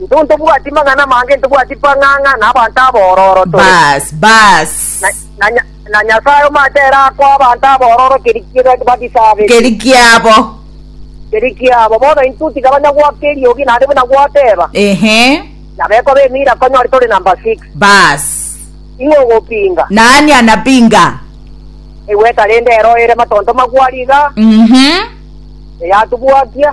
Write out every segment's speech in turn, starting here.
Intwe ntobwati mang'ana amange, ntobwati pang'ang'a na abanto abororo tore. Baas, baas. Na, na, Nya- na Nyasae omanyete ere akoa abanto abororo keri kiba- bagisabete, Keri kiabo. keri kiabo. Bono intwe tiga banya goaka eriogi, naende buna gwateba, Ehe. nabekwa b'emira konyori tore number six. Baas. Ing'o ogopinga? Nani anapinga? Egweta rende ero ere matonto magwari iga, Mhm. eyatubwakia.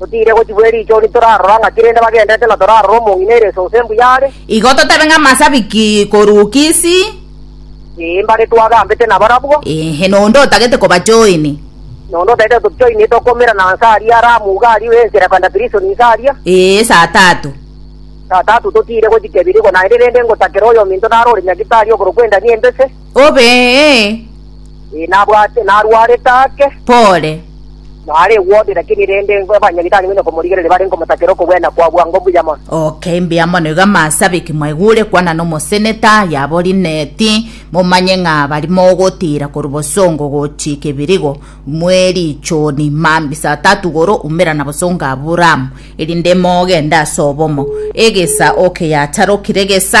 Totiire gochigwa erichoni torarora ng'aki rende bagenderete na torarora omong'ina ere esonso embuya are. Igo totabe ng'amasabiki korwa Kisi. Ee, mbare twagambete nabarabwo. Inhe nonde otagete kobachoini. Nonde otagete tochoini etokoumera na nsa aria ara amo uga aria ensera kwenda Pirisoni nsa aria. Ee, saa tatu. Saa tatu totiire gochika ebiiri igo naende rende ngotakera oyominto naro ore Nyagitalio okorokwa endani embese. Obe ee. Ee, nabwate, narwarete ake. Pole. Nare egwobe, lakini rende engo abanyabitari buna komorigereria bare nkomotakera okogwena kwa bwango mbuya mono. Okay, mbuya mono iga masabiki mwaigure kwana nomoseneta yabo Lineti momanye ng'a bari mogotira korwa bosongo gochika ebirigo mwerichoni mambisa atatu goro umera na bosongo Aburamu erinde mogende ase obomo egesa okay yacharokire gesa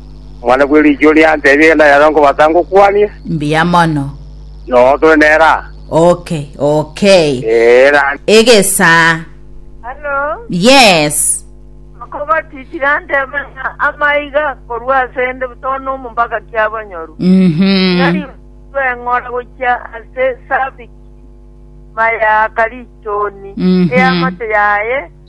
Omwana bwe riicho oria antebie egenda yaro nkobasa ngokwanie. Mbuya mono. Noo tore nere aa. Okay, okay. Ee, ra. Egesaa. Halo, Yes. okobatitire antebe ng'a amaiga korwa asende butoo nomo mpaka kiabanyoru. Mhm. Nari beng'ora gochia ase esabiki, mayaka richoni, Mhm. eamate yaye,